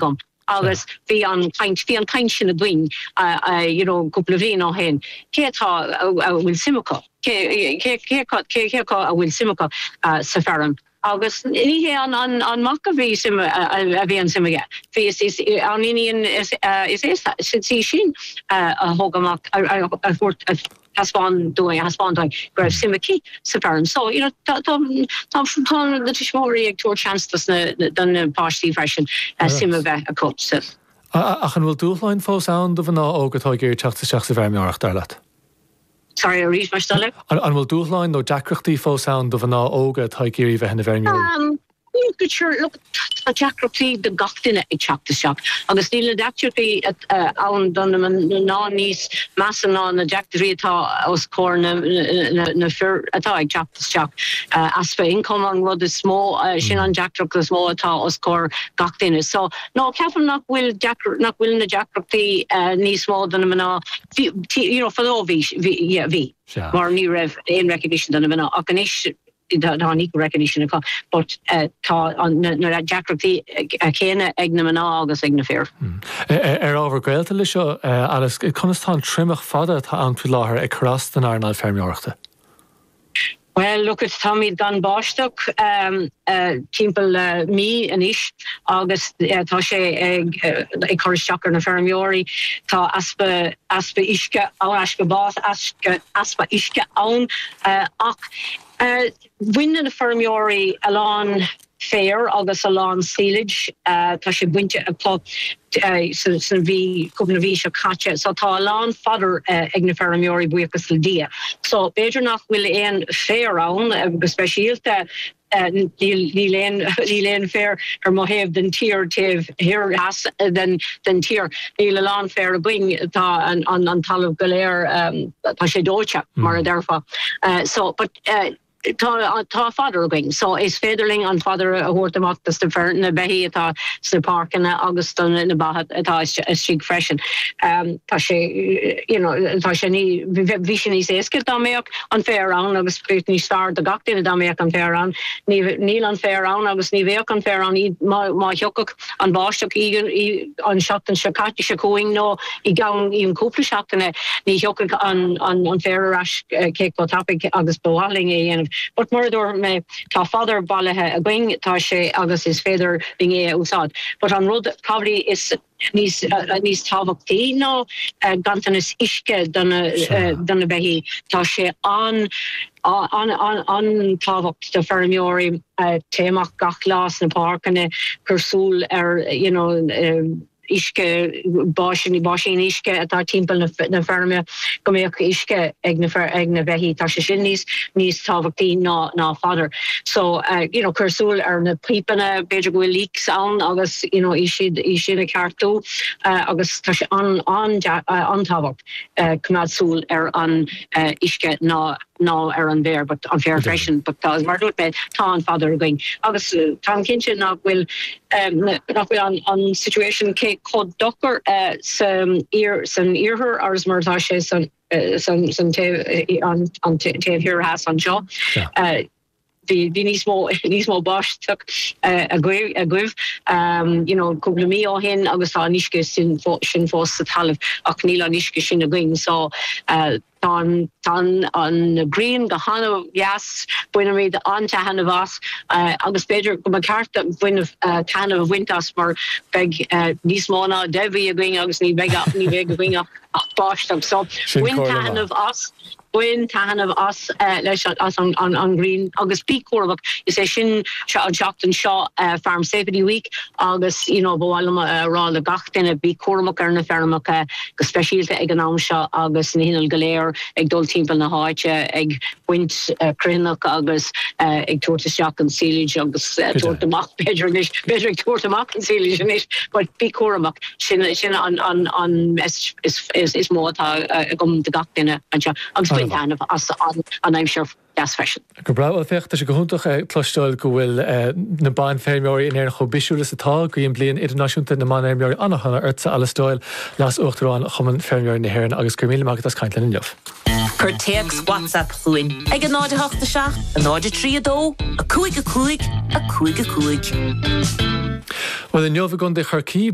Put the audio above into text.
agam agus bhí an chaint, bhí an chaint sin againn you know cúpla bhliain ó shin, cé acu a bhfuil suim acu, cé, cé, cé, cé, cé acu a bhfuil suim acu sa feirm agus ní hé an, an, an mac a bhí suim, a bhí an suim aige, bhí is, is an iníon is, is é sin a thug amach, a thabhairt. thaispeáin dúinn, a thaispeáin dúinn go raibh suim aici sa bhfeirm. So, you know, tá, tá, tá, tá na tuismitheoirí ag tabhairt seans dos na, do na páistí freisin eh, suim a bheith acu sa, A- a- Ach an bhfuil dúshláin fós ann do mhná óga atá ag iarraidh teacht isteach sa bhfeirmeoireacht, dar leat? Sorry, arís más é do thoil é. An, an bhfuil dúshláin nó deacrachtaí fós ann do mhná óga atá ag iarraidh bheith ina bhfeirmeoirí? Um, But sure, look, tá deacrachtaí do gach duine ag teacht isteach agus níl na deacrachtaí ann do na mná níos measa ná na deacrachtaí atá os comhair na fir atá ag teacht isteach. Easpa income an rud is mó, sin an deacracht is mó atá os comhair gach duine. So, no, ceapaim nach bhfuil nach bhfuil na deacrachtaí níos mó do na mná. You know, fadó bhí, yeah, bhí. Mar ní raibh aon recognition do na mná ach anois, Tá níos recognition acu but tá na deacrachtaí céanna ag na mná agus ag na fir. Ar ábhar gaolta leis seo, Alice, conas tá an triomach fada atá ann faoi láthair ag cur as don earnáil feirmeoireachta? Bhuel, look it, táimid gan báisteach timpeall le mí anois agus tá sé ag cur isteach ar na feirmeoirí. Tá easpa uisce, easpa uisce ann ach Bhain na feirmeoirí a lán féir agus a lán silage. Tá sé bainte acu sa mhí, cúpla na mhí seo caite. So tá a lán fodder ag na feirmeoirí, buíochas le Dia. So b'fhéidir nach bhfuil aon féar ann go speisialta. Níl aon níl aon féar ar mo thaobh den tír, taobh thoir theas den den tír. Níl a lán féir againn, tá an an an talamh go léir tá sé dóite, mar a déarfá. So but tá tá fodder againn, so is féidir linn an fodder a thabhairt amach do sna fir na beithí atá sna páirceanna agus do na ba atá istigh freisin. Tá sé you know tá sé ní bheadh sé níos éasca dá mbeadh an féar ann agus bheadh níos fearr do gach duine dá mbeadh an féar ann. Níl an féar ann agus ní bheadh an féar ann má thiocfadh an bháisteach an seachtain seo caite seo chugainn nó i gceann cúpla seachtaine ní thiocfadh an féar ar ais cé chomh tapaidh agus ba mhaith linn é a dhéanamh but mar a dúirt mé tá fodder bailithe againn tá sé agus is féidir linn é a úsáid but an rud poiblí is níos níos tábhachtaí ná ganntanas uisce do na Sure. do na beithígh. Tá sé an an an an tábhacht do feirmeoirí téigh amach gach lá sna páirceanna cur súil ar you know uisce báisíní báisín uisce atá timpeall na na feirme. go mbeadh uisce ag na fir ag na beithígh tá sé sin níos níos tábhachtaí ná ná fodder so you know cur súil ar na pípeanna b'fhéidir go bhfuil leaks ann agus you know í siad í siad a cheartú agus tá sé an an an tábhacht coimeád súil ar an uisce ná ná ar an bhféar but an féar freisin but tá mar dúirt mé tá an fodder againn agus tá an cinnte nach bhfuil nach bhfuil an an situation cé chomh dochar sa san iarthar agus mar atá sé san san san taobh an an taobh thiar theas anseo. bhí bhí níos mó níos mó báisteach agaibh agaibh you know cúpla mí ó shin agus tá an uisce sin fó sin fós sa talamh ach níl an uisce sin againn so Tá an ghrian go han-deas, bainimid an-taitneamh as agus b'fhéidir go mba cheart dúinn taitneamh a bhaint as mar beidh níos mó ná deich mhí againn agus ní bheidh againn ach báisteach. So bain taitneamh as, bain taitneamh as leis as an ghrian agus bí cúramach. Is é sin seo an tseachtain seo Farm Safety Week agus you know ba mhaith liom a rá le gach duine bí cúramach ar na feirmeacha, go speisialta ag an am seo agus na hinnill go léir ag dul timpeall na háite ag baint cruithneacht agus ag tabhairt isteach an silage agus tabhairt amach b'fhéidir anois, b'fhéidir ag tabhairt amach an silage anois but bí cúramach, sin an message is mó atá agam do gach duine anseo agus bain taitneamh as an aimsir. dheas freisin. Go breá, bhuel féach, tá sé go hiontach a chloisteáil go bhfuil na banfheirmeoirí in Éirinn chomh bisiúil is atá. Guím Bliain Idirnáisiúnta na mBanfheirmeoirí an-shona ortsa, Alice Doyle, Leas-Uachtarán Chumann Feirmeoirí na hÉireann, agus go raibh míle maith agat as caint linn inniu. Cuir téacs WhatsApp chugainn ag 08 7 03 2 5 5 5 5. Bhuel inniu i gContae Chorcaí.